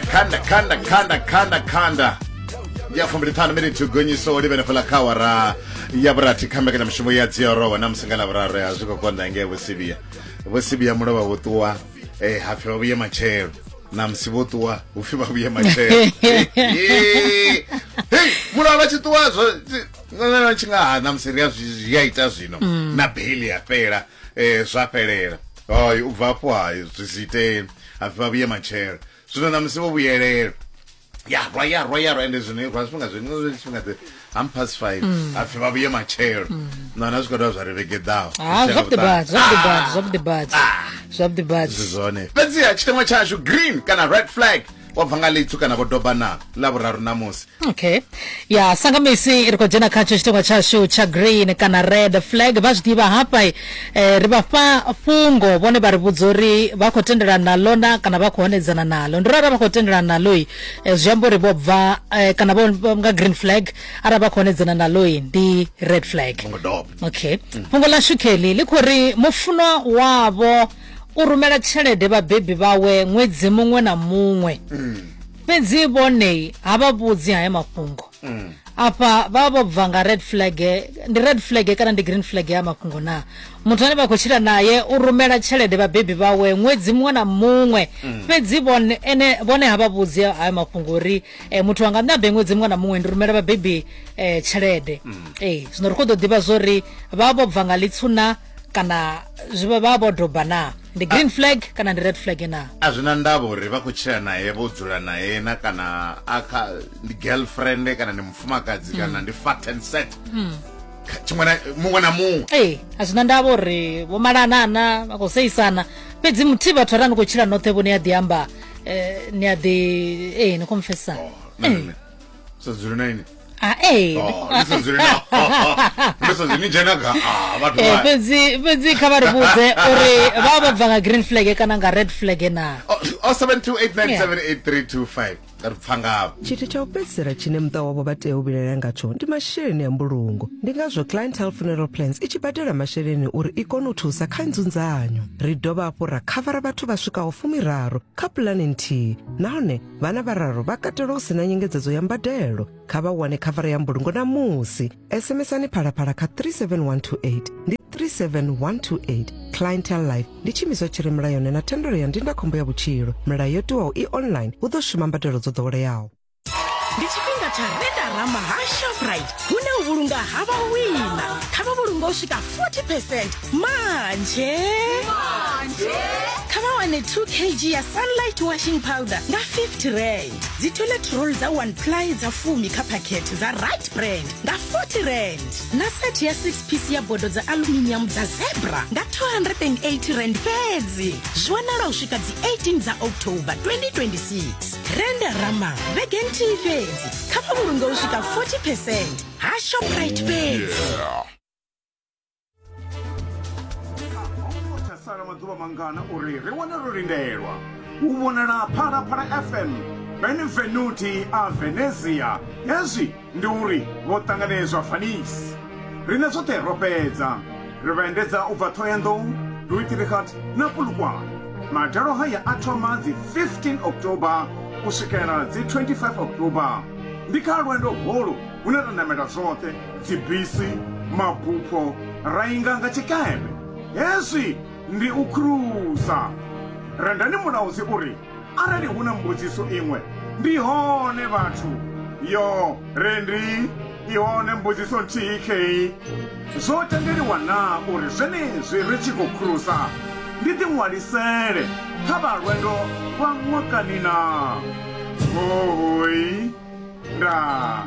khanda khanda khanda khanda khanda ya fumbiliṱhanu miniti gonyiso livhene fhala kha awara ya vhurathi kha mbekanyamushumo ya dziorowa na musi nga lavhuraru ya zwi khou konḓa ngei vhosivia vhosivia mulovha vho ṱuwa eh, hapfi vha vhuye matshelo na musi vho ṱuwa hupfi vha vhuye matshelo Eh, hei mulovha vha tshi ṱuwa zwo tshi nga ha na musi ri a zwi zwi a ita zwino na beli ya fhela eh zwa fhelela hayi u bva afho hayi zwi si itee hapfi vha vhuye matshelo zwino na musi vho vhuyelela ya rwa ya rwa ya rwa ende zwino rwa zwifhinga zwino zwi tshifhinga dze ham past five hapfi vha vhuye matshelo na na zwi khou dovha zwa ri vhegeḓaho ha zwavhuḓi badi zwavhuḓi badi zwavhuḓi badi zwavhuḓi badi zwi zwone fhedziha tshiteṅwa tshashu green kana red flag wa bva nga ḽitsu kana vho doba na ḽa vhuraru ṋamusi okay ya sanga misi ri khou dzhena khatsho tshitengwa tshashu tsha green kana red flag vha zwi ḓivha hafha eh, ri vha fha fhungo vhone vha ri vhudza uri vha khou tendelana naḽo na kana vha khou hanedzana naḽo ndi uri arali vha khou tendelana naḽoi eh, zwi amba uri vho bva eh, kana vho vho nga green flag arali vha khou hanedzana naḽoi ndi red flag ngo doba okay fhungo ḽa shukeli ḽi khou ri mufunwa wavho u rumela tshelede vhabebi vhawe ṅwedzi muṅwe na muṅwe mm. fhedzi vhonei ha vha vhudzi haya mafhungo mm. afha vha vho bva nga red flag ndi red flag kana ndi green flag ya mafhungo na muthu ane vha khou tshila naye u rumela tshelede vhabebi vhawe ṅwedzi muṅwe na muṅwe mm. fhedzi vhone ene vhone ha vha vhudzi haya mafhungo uri eh, muthu anga nṋe abe ṅwedzi muṅwe na muṅwe ndi rumela vhabebi eh, tshelede ee zwino ri khou ḓo ḓivha zwo ri vha vho bva nga litsuna kana zwi vha vho doba na ndi green flag kana ndi red flag na a zwi na ndavha uri vha khou tshila naye vho dzula naye na kana a kha ndi girlfriend kana ndi mufumakadzi mm. kana ndi fat and set mm. tshiṅwe na muṅwe na muṅwe ee eh, a zwi na ndavha uri vho malanana vha khou seisana fhedzi muthihi vhathu arali ni khou tshila noṱhe vho ni a ḓi amba eh, ni a ḓi ee eh, ni khou mfesana oh, sa dzuli na ini Ah, eh. Oh, ni sa dzuli na ni sa dzuli ni dzhena ga ah vhathu Eh, vha fhedzi fhedzi kha vha ri vhudze uri vha vha bva nga green flag kana nga red flag na Oh, oh, 7289788325 ri pfa ngavho tshithu tsha u fhedzisela tshine muṱa wavho vha tea u vhilaela ngatsho ndi masheleni a mbulungo ndi ngazwo clientele funeral plans i tshi badela masheleni uri i kone u thusa kha nzunzanyo ri dovha hafhu ra khavara vhathu vha swikaho fumiraru kha pulani nthihi nahone vhana vhararu vha katelwa u si na nyengedzedzo ya mbadelo kha vha wane khavara ya mbulungo na musi sms-ani phalaphala kha 37128 ndi 37128 clientel life ndi tshiimiswa tshi re mulayoni na thendelo ya ndindakhombo ya vhutshilo milayo yo tiwaho i online hu ḓo shuma mbadelo dzo ḓoweleaho ndi tshifhinga tsha redarama ha shoprite hune u vhulunga ha vhawina kha vha vhulunga u swika 40 percent manje manje kha vha wane 2 kg ya sunlight washing powder nga 50 rand dzi toilet roll dza 1 ply dza fumi kha phakhethe dza right brand nga 40 rand na set ya 6 piece ya bodo dza aluminium dza zebra nga 280 rand fhedzi zwi wanala u swika dzi 18 dza october 2026 renda rama vhege nthihi fhedzi kha vha vhulunge u swika 40 percent ha shoprite fhedzi sala maḓuvha mangana uri ri wane ro lindelwa u vhonala phalaphala fm benevenuti a venezia hezwi ndi uri vho ṱanganedzwa fanisi riṋe zwoṱhe ro fhedza ri vha endedza u bva thohoyanḓou duitirikhat na pulukwane madalo haya a thoma dzi 15 oktoba u swikela dzi 25 oktoba ndi kha lwendo holu hune ra namela zwoṱhe dzibisi, mabupho ra inga nga tshikeme. Hezwi ndi u kruza. Rendani mulaudzi u ri, Arali hu na mbudziso iṅwe, ndi hone vhathu. Yo, Rendi, i hone mbudziso nthihi khei. Zwo tendeliwa naa uri zwenezwi ri tshi khou kruza ndi ḓiṅwalisele kha vha lwendo lwa ṅwakani naa? Hoooi. Ndaa.